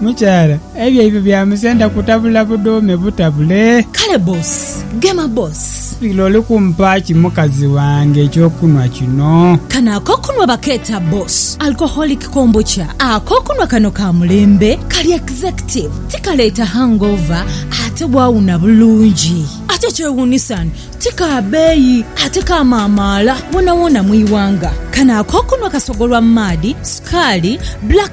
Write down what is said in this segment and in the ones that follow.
Mukyala, ebyaibwe bya musenda kutabula budhuume butabule. Kale boss, gema boss. Lira oli kumpa ki mukazi wange eky'okunhwa kino? Kano ak'okunhwa bakeeta boss, alcoholic kombucha. Ak'okunhwa kano ka mulembe, kali executive, tikaleeta hangover ate waawuna bulungi. Ate ekyewuunisa ni ti ka beeyi ate kamaamaala woonawoona mu ighanga. Kano ak'okunhwa kasogolwa mu maadhi, sukaali, black.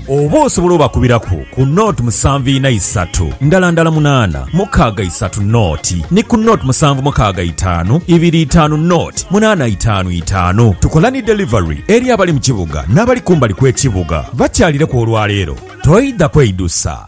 Oba osobola obakubiraku ku nought musanvu ina isatu ndala ndala munaana mukaaga isatu nought ni ku nought musanvu mukaaga itaanu ibiri itaanu nought munaana itaanu itaanu. Tukola ni delivery eri abali mu kibuga n'abali kumbali kw'ekibuga. Bakyalireku olwaleero, toidha kweidusa.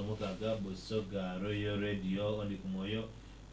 Omughaga Busoga Royal Radio Ondi ku mwoyo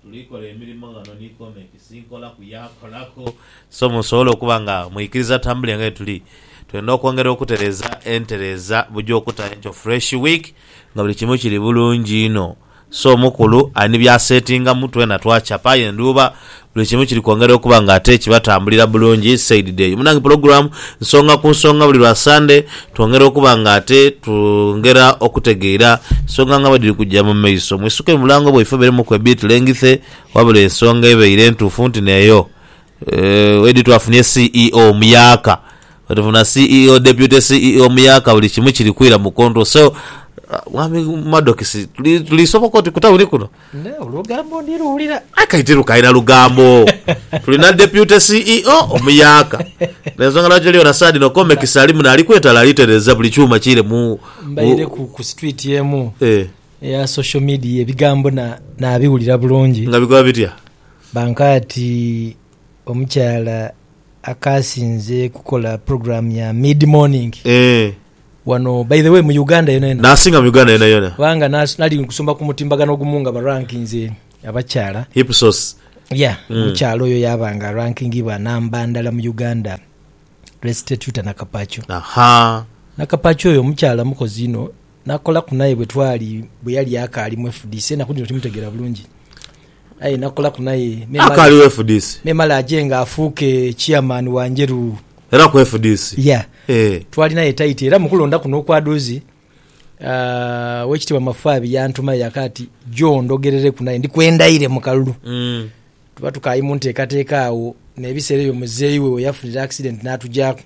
tuli kola emirimo ghano ni Comekisi nkola ku yaakolaku so musobole okuba nga mwikiriza atambule nga yetuli twenda okwongera okutereeza entereeza buja okuta enkyo fresh week nga buli kimu kiri bulungi inho so mukulu ali ni byasetingamu twena twacapa aye ndhuuba Buli kimu kiri kwongera okuba nga ate kibatambulira bulungi said Deyo. Munange pulogulamu Nsonga ku Nsonga buli lwa Sande twongera okuba nga ate twongera okutegeira nsonga nga bwediri kujja mu maiso. Mwisuke mu mulango bwaife oberemuku ebit lengithe wabula ensonga ebeire ntuufu nti neyo wedi twafunye CEO omuyaaka, bwetufuna CEO, Deputy CEO omuyaaka buli kimu kiri kwira mu control so mwami Madokisi tuli soboka oti ku tawuni kuno? Nawe olugambo ndi luwulira. Aye kati tirukalina lugambo tulina deputy CEO omuyaaka nensonga lwaki toli yona saha dhino Comex alimu nali kwetala alitereza buli kyuma kiire mu Mbaire ku ku street emu eh eya social media ebigambo na nabiwulira bulungi nga bikoba bitya? bankoa ati omukyala akasinze kukola program ya mid morning eh. Wano by the way mu Uganda yona yona. Nasinga mu Uganda yona yona. Kubanga nali nkusoma ku mutimbagano ogumu nga ba rankinze abakyala. Ipsos. Yeah omukyala oyo yaba nga arankingibwa namba ndala mu Uganda Restituta Nakapacho. Ahaa. Nakapacho oyo omukyala mukozi inho nakolaku naye bwetwali bweyali akaali mu fdc enaku dhino timutegera bulungi. Aye nakolaku naye memale aje nga afuuke chairman wa Njeru. Era ku fdc? Yeah. Twali naye tight era mu kulonda kuno okwa doozi Owekitiibwa Mafaabi yantumayo yaka ati jo ondogerereku naye ndikwendaire mu kalulu. Tuba tukali mu nteekateeka agho n'ebiseera ebyo muzeeyi we weyafunira accident n'atugyaku.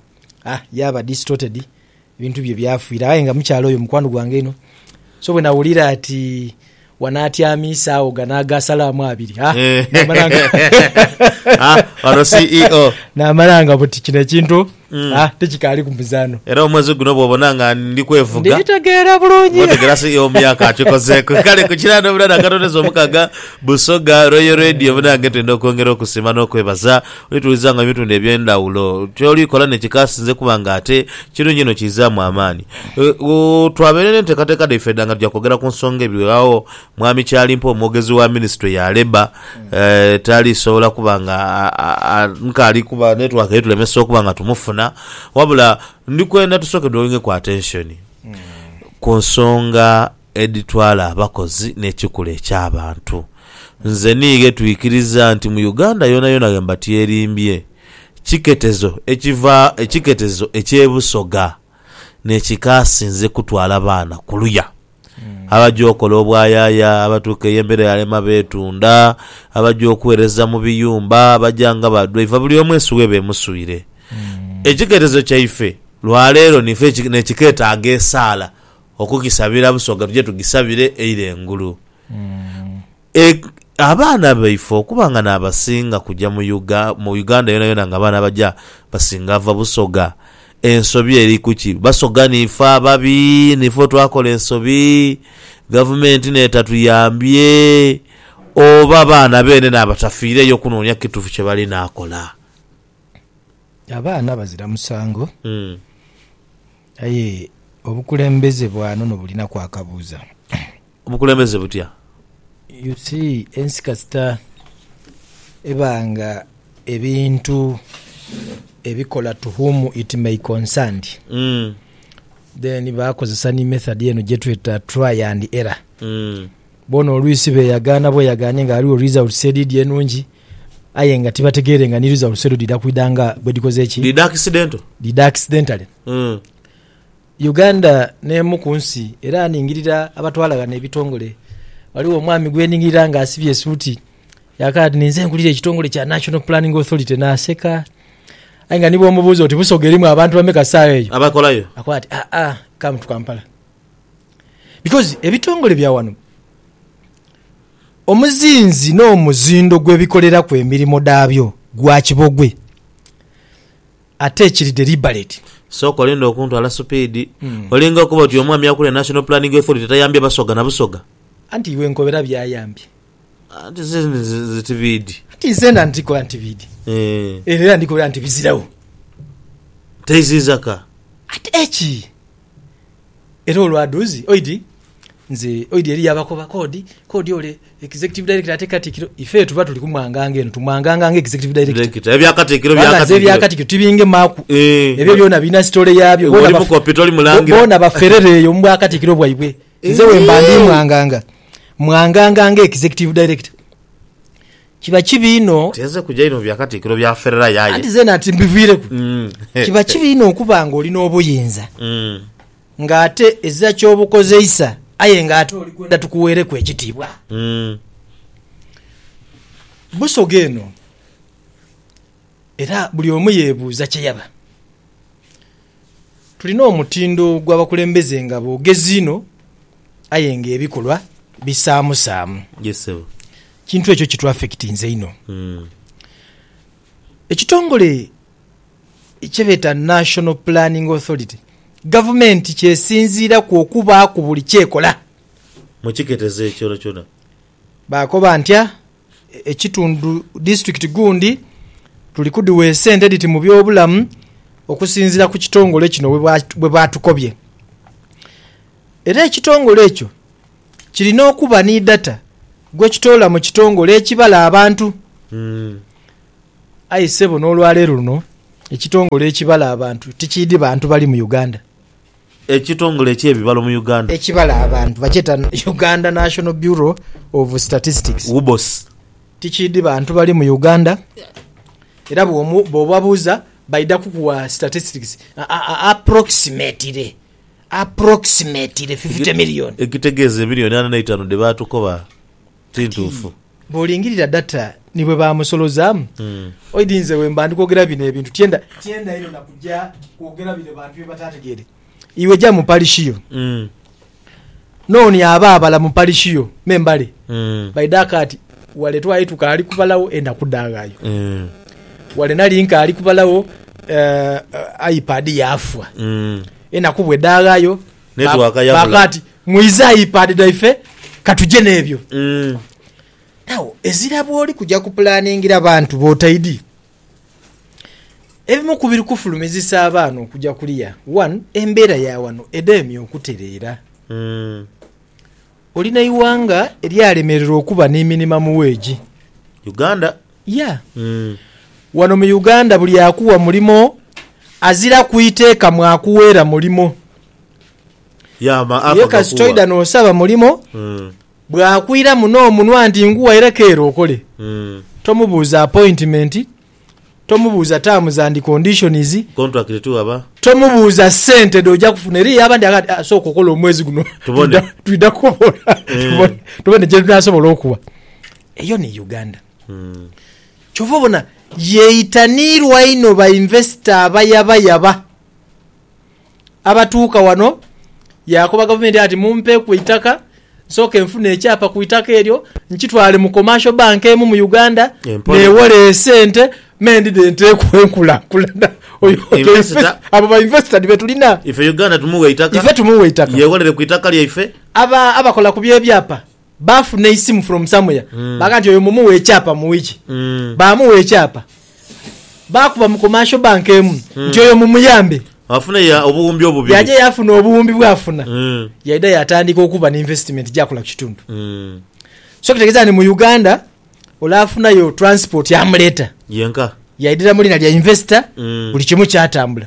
Ah, yaba distorted Ebintu bye byafiira aye nga mukyala oyo mukwano gwange inho, so bwe nawulira ati wanaatyamiisaagho gano agaasalaamu abiri, ha, naamala nga. Ha, wano CEO. Naamala nga buti kino ekintu, ha, tikikaali ku muzaano. Era omwezi guno bw'obona nga ndi kwevuga. Ndi tegeera bulungi. Otegeera CEO myaka akikozeeku. Kale ku kiraano munange akatondezo omukaga, Busoga Royal Radio munange twenda okwongera okusiima n'okwebaza Olituulizanga mu bitundu eby'endhawulo. Ky'oli kola ni kikaasinze kuba ng'ate kirungi inho kiizaamu amaani. Twabaire n'enteekateeka dhaife edha nga tuja kwogera ku nsonga ebighagho. Mwami Kyalimpa omwogezi wa minisitule ya Labour tali sobola kuba nga nkaali kuba netiwaaka eritulemesa okuba nga tumufuna wabula ndi kwenda tusooke dwowingeku atenshoni ku nsonga. edhitwala abakozi n'ekikula eky'abantu. Nze ni ghe twikiriza nti mu Uganda yonayona ghe mba tyerimbye, kiketezo ekiva ekiketezo eky'e Busoga n'ekikaasinze kutwala baana kuluya. Abaja okola obwayaaya, abatuuka eyo embeera yalema beetunda, abaja okuweereza mu biyumba, abaja nga ba dwaiva buli omu ensi weeba emuswire. Ekiketezo kyaife lwa leero nife n'ekiketaaga esaala Okugisabira Busoga tuje tugisabire eire engulu e abaana baife okuba nga n'abasinga kuja mu Uga mu Uganda yonayona nga abaana abaja basinga va Busoga. Ensobi eri kuki? Basoga niife ababi? Niife otwakola ensobi Gavumenti n'etatuyambye? Oba baana beene n'abatafiireyo kunoonia kitufu kye bali n'akola? Abaana bazira musango. Aye obukulembeze bwanono bulinaku akabuuza. Obukulembeze butya? You see ensi kasita eba nga ebintu ebikola to whom it may concerned then bakozesa ni method eno gyetweta try and error. Boona olwisi beyagaana bweyagaane nga ghaligho results edhidhi enungi. Aye nga tibategeere nga ni results edho dhidha kwidha nga bwedhikoze ki? Dhidha accidental. Dhidha accidentally. Uganda n'emu ku nsi era ningirira abatwala ghano ebitongole. Ghaligho omwami gwe ningirira nga asibye esuuti yaakala ati, ninze nkulira ekitongole kya National Planning Authority. Naaseka. Aye nga ni bwomubuuza oti, Busoga erimu abantu bameka saagha eyo? Abakolayo. Akoba ati, Aa, come to Kampala. Because ebitongole bya wano omuzinzi n'omuzindo gwe bikoleraku emirimo dhabyo gwa kibogwe ate kiri deliberate. Sooka olinde okuntwala supiidi. Olinga okuba oti omwami akulira National Planning Authority tayambye Basoga na Busoga. Anti iwe nkobera byayambye. Anti ze nze tibiidi. Anti nzena ndikola ntibiidi. Eeh. Era ndikobera nti biziragho. Teiziiza ka. Ate ki? Era olwa dhuuzi oidhi nze oidhi eriyo abakoba kodi kodi ole executive director ate katikiro ife tuba tuli kumwanganga eno tumwanganga nga executive director Director. Ebya katikiro bya kubanga nze ebya katikiro. katikiro tibingemaku Eh. ebyo byona birina story yabyo Iwe oli baf- mukopi, toli mulangira. bona baferere eyo mubwa katikiro bwaibwe nze wemba ndi mwanganga mwanganga nga executive director Kiba kibi inho. Nti nze kuja inho mu bya katikkiro bya Ferrari aye. Anti zeena ati mbiviireku. Kiba kibi inho okuba nga oli n'obuyinza ng'ate ezira ky'obukozeisa aye ng'ate oli kwenda tukuweereku ekitiibwa. Busoga eno era buli omu yeebuuza kye yaba. Tulina omutindo gw'abakulembeze nga boogezi inho aye ng'ebikolwa bisaamusaamu. Ekintu ekyo kitwafekitinze inho. Ekitongole kye beeta National Planning Authority Gavumenti ky'esinziiraku okubaaku buli ky'ekola. Mu kiketezo ekyona kyona. Baakoba ntya? ekitundu disitulikiti gundi tuli kudhiwa esente edhiti mu byobulamu okusinziira ku kitongole kino bwe baatukobye. Era ekitongole ekyo kirina okuba ni data gwe kitoola mu kitongole ekibala abantu. Aye ssebo n'olwaleero luno ekitongole ekibala abantu tikiidhi bantu bali mu Uganda. Ekitongole eky'ebibalo mu Uganda. Ekibala abantu bakyeta Uganda National Bureau of Statistics. UBOS. Tikiidhi bantu bali mu Uganda era bw'obabuuza baidha kukuwa statistics approximately, approximately fifty million. Ekitegeeza emiriyoni ana n'eitaanu dhe baatukoba. Tintuufu. Bw'olingirira data ni bwe baamusolozaamu, oidhi nze bwe mba ndi kwogera bino ebintu tienda tienda inho na kuja kwogera bire bantu bye bataategeere. Iwe ja mu parishi yo, n'oni aba abala mu parishi yo me mbale. Baidha kaati, wale twali tukaali kubalagho enaku dhaaghayo. Wale nali nkaali kubalagho, aipad yaafwa. Enaku bwe dhaaghayo, Network yabula. Baagamba nti, Muyize iPad dhaife ka tuje n'ebyo. Mm. Now, ezira bw'oli kuja kupulaaningira bantu b'otaidi, ebimu ku biri kufulumizisa abaana okuja kuliya, one, embeera ya wano edemye okutereera. Mm. Oli n'eighanga eryalemererwa okuba ni minimum wage. Uganda? Yeah. Wano mu Uganda buli akuwa mulimo aziraku iteeka mwakuweera mulimo. Yeah, ma, ako Ye kasita gakuwa. oidha n'osaba mulimo, Mm, bw'akwiramu n'omunwa nti nguwaireku ere okole, mm. tomubuuza appointment, Tomubuuza terms and conditions. Contract to aba. Tomubuuza sente dh'oja kufuna. Eriyo abandi agha ati, sooka okole omwezi guno twidha kukobola tubone kye tunaasobola okuwa. Eyo ni Uganda. Kyova obona yeitaniirwa inho bainvesita abayaba yaba. abatuuka wano yaakoba gavumenti ati mumpeeku eitaka nsooke nfune ekyapa ku itaka eryo nkitwale mu commercial bank emu mu Uganda Empore. neewole esente me ndidhe nteeku enkulakulana Oyo- oyo Investor. invest- abo ba investor be tulina ife uganda tumuwa eitaka ife tumuwa eitaka yewolere ku itaka lyaife aba abakola ku byebyapa Baafuna eisimu from somewhere baga nti oyo mumughe ekyapa mu wiki. Baamugha ekyapa. Baakuba mu commercial bank emu nti oyo mumuyambe. Afune ya obuwumbi obubiri. Yaja yaafuna obuwumbi bwafuna. Yaidha yaatandika okuba ni investment gy'akola ku kitundu. So kitegeeza nti mu Uganda ole afunayo transport amuleeta. Yenka. Yaidhira mu liina lya investor buli kimu kyatambula.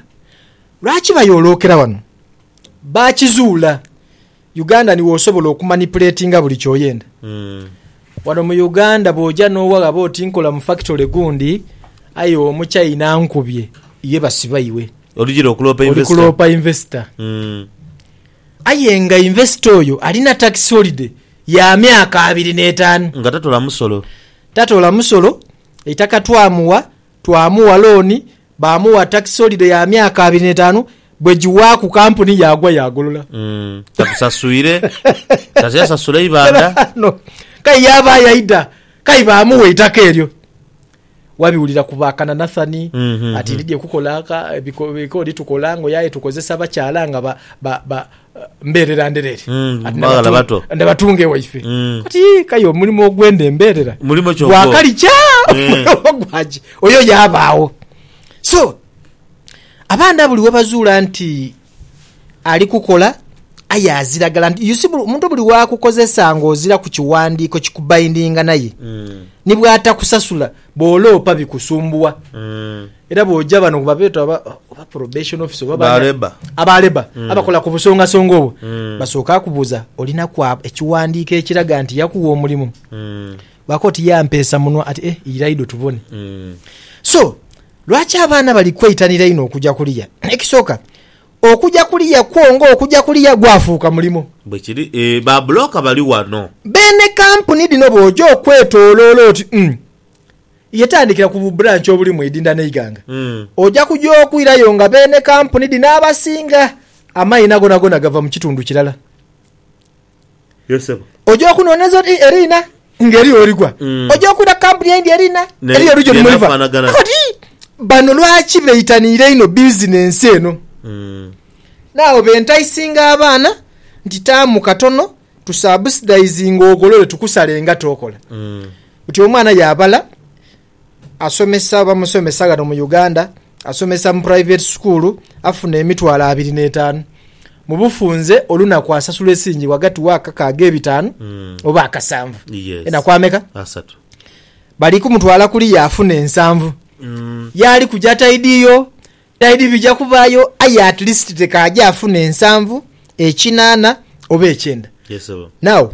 Lwaki bayoolookera wano? Baakizuula. Uganda ni wosobola okumanipuletinga buli kyoyenda. Wano mu Uganda bwoja nowaghaba oti nkola mu factory gundi aye omuchaina ankubye ye basiba iwe. Oli jira okuloopa Oli investor. kuloopa investor. Mm. Aye nga investor oyo alina tax holiday ya myaka abiri n'etaanu. Nga tatola musolo. Tatola musolo, eitaka twamuwa. Twamugha looni, baamugha tax holiday ya myaka abiri n'etaanu, bwe giwaaku kampuni yaagwa yaagolola. Mm, takusasuire kati yasasula eibanda Ghano kai yaaba yaidha, kai baamugha eitaka eryo. Wabiwulira ku ba Kananathani Mhm. ati ndidhye kukola ka- ebiko- ebikooli tukola ngoye aye tukozesa bakyala nga ba- ba- ba- mbeerera ndereere mm, ndabatunga ewaife mm. kati kaye omulimu ogwenda embeerera gwakalikya eh. gwaki oyo yabaawo so abaana buli webazuula nti ali kukola aye aziragala nti yusi omuntu buli wakukozesa nga ozira ku kiwandiiko kikubaindinga naye mm. nibwatakusasula Bw'oloopa bikusumbuwa. Era bw'oja bano babeeta oba oba probation officer oba Ba bani- labour. aba labour abakola ku busongasonga obwo basooka akubuuza olina kwa ekiwandiiko ekiraga nti yakuwa omulimu baako oti yampeesa munwa ati eh iraido tubone so lwaki abaana bali kweitanira inho okuja kuliya ekisooka Okuja kuliya kwo nga okuja kuliya gwafuuka mulimo. Bwekiri, ee, ba bulooka bali wano. Beene kampuni dhino bw'oja okwetooloola oti, umm, ye tandikira ku bu branch obuli mu idinda n'eighanga, oja kuja okwirayo nga beene kampuni dhino abasinga amaina gonagona gava mu kitundu kirala. Oja okunhoneza oti eri ina nga eriyo oligwa. Mm. Oja okwira ku kampuni endi eri ina eriyo oligya oti muliva. Oti bano lwaki beitaniira inho bizinensi eno? Mm. Naagho bentaisinga abaana nti taamu katono tusabusdaizinge ogolole tukusale engato okola. Mm. Oti omwana yaabala. asomesa oba musomesa ghano mu Uganda, asomesa mu puraiveti sukuulu, afuna emitwalo abiri n'etaanu. Mu bufunze olunaku asasula esiringi ghagati wa kakaaga ebitaanu oba akasanvu. Yes. Enaku ameka? Asatu. Bali kumutwala kuliya afuna ensanvu. Yaali kuja taidiyo, taidi bija kubaayo aye at least te k'aje afuna ensanvu, ekinaana oba ekyenda. Yes, sebo. Now,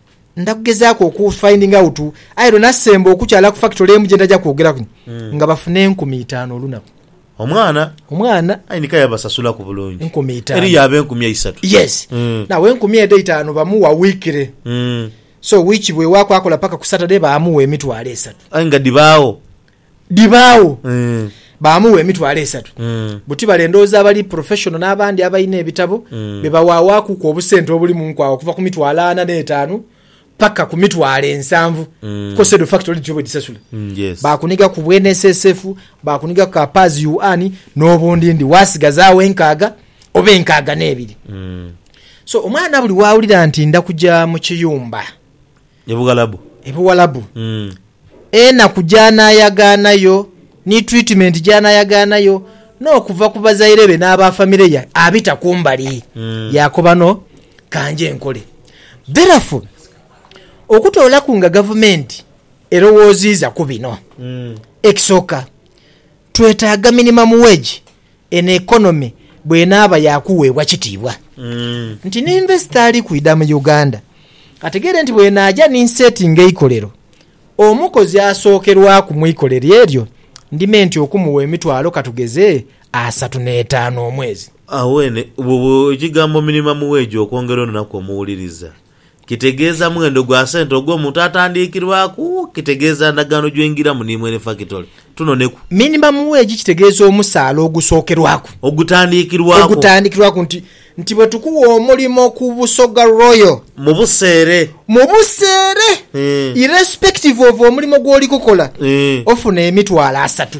Nda kugezaaku oku finding out aye lwe nasemba okukyala ku factory emu gye ndaja kwogeraku hmm. nga bafuna enkumi itaanu olunaku. Omwana omwana aye nika yabasasulaku bulungi enkumi itaanu eriyo aba enkumi eisatu yes mm. nawe enkumi edho itaanu bamuwa wikire mm. so wiki bwewaaku akola paka ku saturday bamuwa emitwalo esatu aye nga dhibaawo dhibaagho baamugha emitwalo esatu. Buti bale ndhowooza abali professional n'abandi abalina ebitabo be bawaawaakuku obusente obuli mu nkwawa okuva ku mitwalo ana n'etaanu paka ku mitwalo ensanvu because edho factory dhityo bwedhisasula. Baakuniga ku bwa NSSF, baakuniga ku ka PAS yuan n'obundindi waasigazaawo enkaaga oba enkaaga n'ebiri. So omwana buli waawulira nti nda kuja mu kiyumba. Ebughalabu. Ebughalabu. Enaku gy'anaayagaana yo, ni tiritimenti gy'anaayagaana yo, n'okuva ku bazaire be n'aba famire ye abita ku mbali, yaakoba no, Ka nje nkole. Therefore, okutoolaku nga gavumenti erowooziiza ku bino, ekisooka, twetaaga minimum wage eno economy bwenaaba yaakuweebwa kitiibwa nti ni investor ali kwidha mu Uganda ategeere nti bwenaaja ni nsetinga eikolero, omukozi asookerwaku mu ikolero eryo ndime nti okumuwa emitwalo katugeze asatu n'etaanu omwezi. Awo eno bw'oba ogigambo minimum wage okwongera olunaku omuwuliriza. Kitegeeza mwendo gwa sente ogw'omuntu atandiikirwaku, kitegeeza ndagaano gy'oingiramu ni mwene fakitole. Tunoneku. Minimum wage kitegeeza omusaala ogusookerwaku. Ogutandikirwaku. Ogutandikirwaku nti, nti bwe tukuwa omulimo ku Busoga Royal. Mu buseere. Mu buseere. Irrespective of omulimo gw'oli kukola, ofuna emitwalo asatu.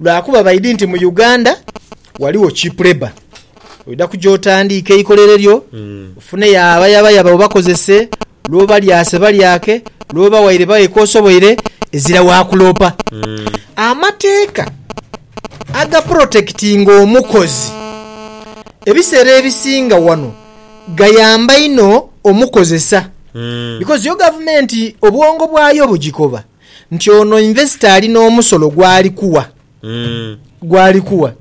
lwakuba baidhi nti mu Uganda ghaligho cheap labour. Oidha kuja otandiike eikolero lyo, ofuneyo abayabayaba obakozese, lw'oba lyase balyake, lw'oba waire baghe k'osoboire, ezira wa kuloopa. Amateeka agaporotekitinga omukozi ebiseera ebisinga wano gayamba inho omukozesa bikozi yo gavumenti obwongo bwayo bugikoba. nti ono investor ali n'omusolo gwali kuwa gwali kuwa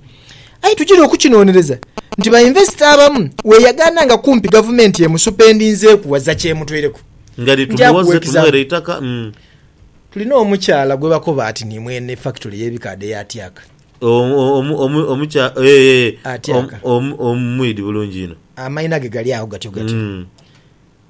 aye tugira okukinonereza nti ba investor abamu weyagaana nga kumpi gavumenti emusupendinzeeku waza kyemutweireku nga dhi Nja kuwa tumuwoze example. tumuwere eitaka mm. tulina omukyala gwebakoba ati ni mwene factory y'ebikaadho eya Tyaka Omu- omu- omu- omukya eh, eh, Atyaka. om- om- omwidi bulungi ino amayina ge gali agho gatyo gatyo Mm.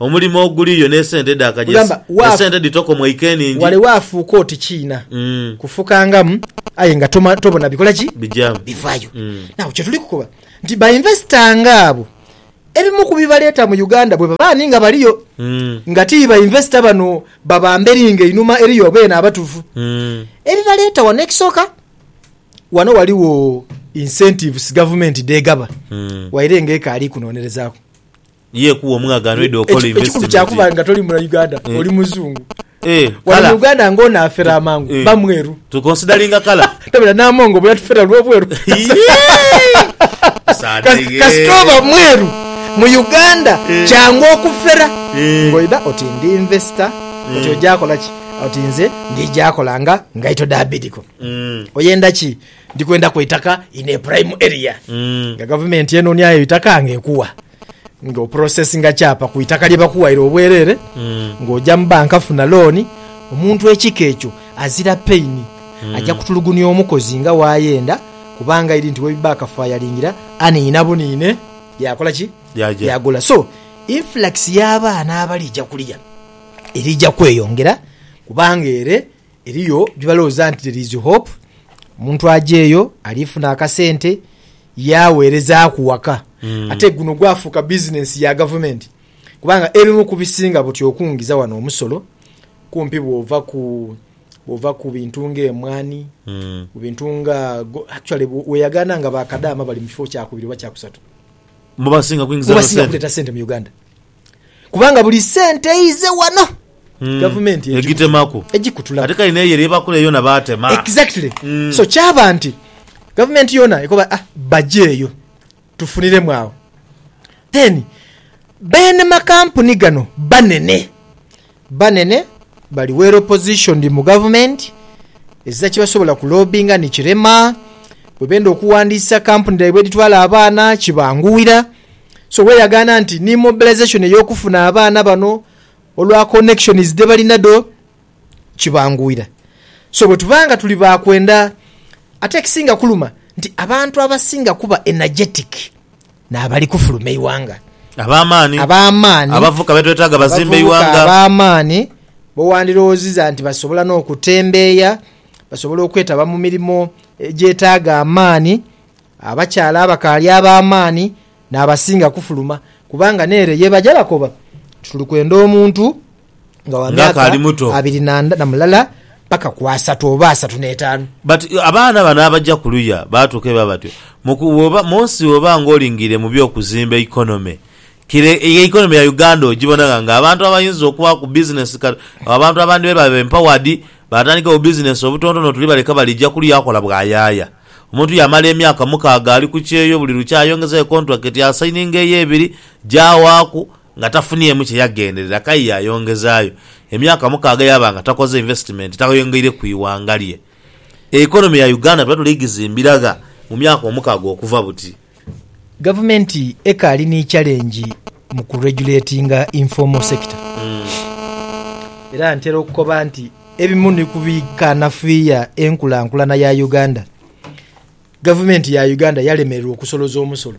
Omulimo oguliyo n'esente edhakajesi, esente dhitoka omwaika eningi. Wale waafuuka oti kiina kufukangamu aye nga tobona bikola ki? Bivayo. Nagho kyetuli kukoba nti ba investor nga abo ebimu ku bibaleeta mu Uganda bwebaba ani nga baliyo nga ti ba investor bano baba mberi nga einhuma eriyo beene abatufu ebibaleeta wano. Ekisooka wano waligho incentives gavumenti dhegaba waire nga ekaali kunonerezaaku Ye kuwa omugha gano ede okola Eki- ekikulu investment. kyakuba nga toli muna uganda Eh. oli muzungu Eh, wano kala. mu uganda nga ono afera amangu Eh. bamweru To consideringa colour. tabira namongo oba yatufera lwobweru Sadege. kasita oba mweru mu uganda Eh. kyangu okufera Eh. ngoida oti ndi investor oti Eh. ojakolaki oti nze ndijakola nga ngaito dabidiko Mm. oyenda ki Ndi kwenda ku itaka in a prime area nga gavumenti enonia yo itaka nga ekuwa nga oprosesinga kyapa ku itaka lye bakuwaire obwerere nga oja mu banka funa looni. Omuntu ekika ekyo azira pain aja kutulugunia omukozi nga wayenda kubanga ili nti webiba akafayalingira aniina buniine yakola ki? Yaja. Yagula. So influx ya baana abalija kuliya elija kweyongera kubanga ere. Eriyo bye balowooza nti there is hope, omuntu aja eyo alifuna akasente yagheerezaaku waka. Ate guno gwafuuka bizinensi ya gavumenti kubanga ebimu ku bisinga buti okungiza wano omusolo kumpi bw'ova ku bw'ova ku bintu ng'emwaani, ku bintu nga go- actually bwe- weeyagaana nga ba kadaama bali mu kifo kyakubiri oba kyakusatu Mu basinga kuingiza mu eno basinga sente. kuleeta sente mu Uganda. Kubanga buli sente eize wano hmm. gavumenti egitemaku egikutula ate kale neyo eryebakula yona batema exactly mm. so kyaba nti gavumenti yona ekoba ah, bajeeyo tufuniremu awo then bene makampuni gano banene Banene bali well oppositioned mu gavumenti ezira kyebasobola ku lobinga ni kirema, bwebenda okuwandiisa kampuni dhaibwe edhitwala abaana kibanguwira so weyagaana nti ni mobilisation eyokufuna abaana bano olwa connections dhebali nadho kibanguwira so bwetuba nga tuli ba kwenda ate ekisinga kuluma nti abantu abasinga kuba energetic N'abali kufuluma eighanga. Ab'amaani. Ab'amaani. Abavubuka be twetaaga bazimbe eighanga. Abavubuka ab'amaani bo wandirowooziza nti basobola n'okutembeeya, basobola okwetaba mu mirimo egyetaaga amaani. Abakyala abakaali ab'amaani n'abasinga kufuluma kubanga n'ere ye baja bakoba nti tuli kwenda omuntu nga wa Nga akaali myaka muto. abiri na nda- na mulala paka ku asatu oba asatu n'etaanu. But abaana bano abaja kuluya batuuka eba batyo Muku- woba- munsi woba nga olingiire mu byokuzimba economy kire e economy ya Uganda ogibona nga nga abantu abayinza okuba ku business ka- abantu abandi beba ba empowered batandika bu business obutontono tuli baleka bali ja kuluya akola bwayaaya omuntu yamala emyaka mukaaga ali ku kyeyo buli lukya ayongeza yo contract asayininga eyo ebiri jawaaku Nga tafuniemu kye yagenderera, Kayi yaayongezaayo. Emyaka mukaaga yaaba nga takoze invesitimenti, tayongeire ku ighanga lye. Economy ya Uganda tuba tuli gizimbira gha mu myaka omukaaga okuva buti. Gavumenti ekaali ni challenge mu ku regulatinga informal sector. Era ntera okukoba nti ebimu ni ku bikanafuya enkulankulana ya Uganda, Gavumenti ya Uganda yalemererwa okusoloza omusolo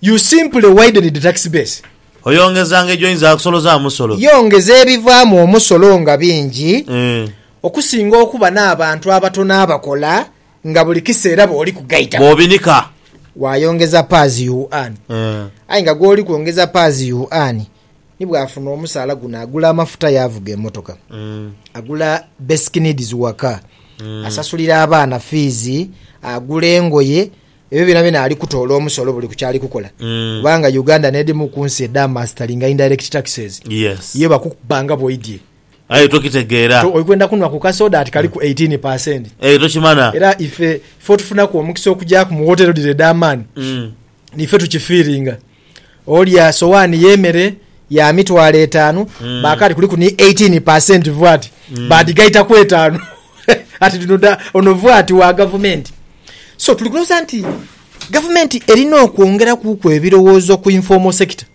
You simply widened the tax base. Oyongezanga gy'oyinza akusolozaamu musolo. Yongeza ebivaamu omusolo nga bingi okusinga okuba n'abantu abatono abakola nga buli kiseera b'oli kugaitamu. Bw'obinika. Waayongeza paazi you earn. Aye nga gw'oli kwongeza paazi you earn ni bw'afuna omusaala guno agula amafuta yaavuga emotoka, agula basic needs waka, asasulira abaana fiizi, agula engoye, Ebyo byonabyona ali kutoola omusolo buli ku kyali kukola kubanga Uganda n'edhimu ku nsi edha masitalinga indirect taxes ye bakukuba nga bw'oidhye. Aye tokitegeera. Oli kwenda kunhwa ku kasoda ati kaliku eighteen per cent. Eyo tokimana. Era ife, ife otufunaku omukisa okugyaku mu wotero dhino edh'amaani, n'ife tukifiiringa. Olya sowaani y'emere ya mitwalo etaanu, baakaali kuliku ni eighteen per cent VAT, baadhigaitaku etaanu. Ati dhino dha, ono VAT wa gavumenti. So tuli kulowooza nti gavumenti erina okwongerakuuku ebirowoozo ku informal sector.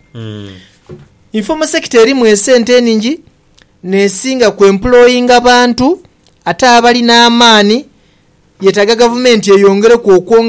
Informal sector erimu esente eningi, n'esinga ku employinga bantu, ate abali n'amaani, yetaaga gavumenti eyongereku okwongera.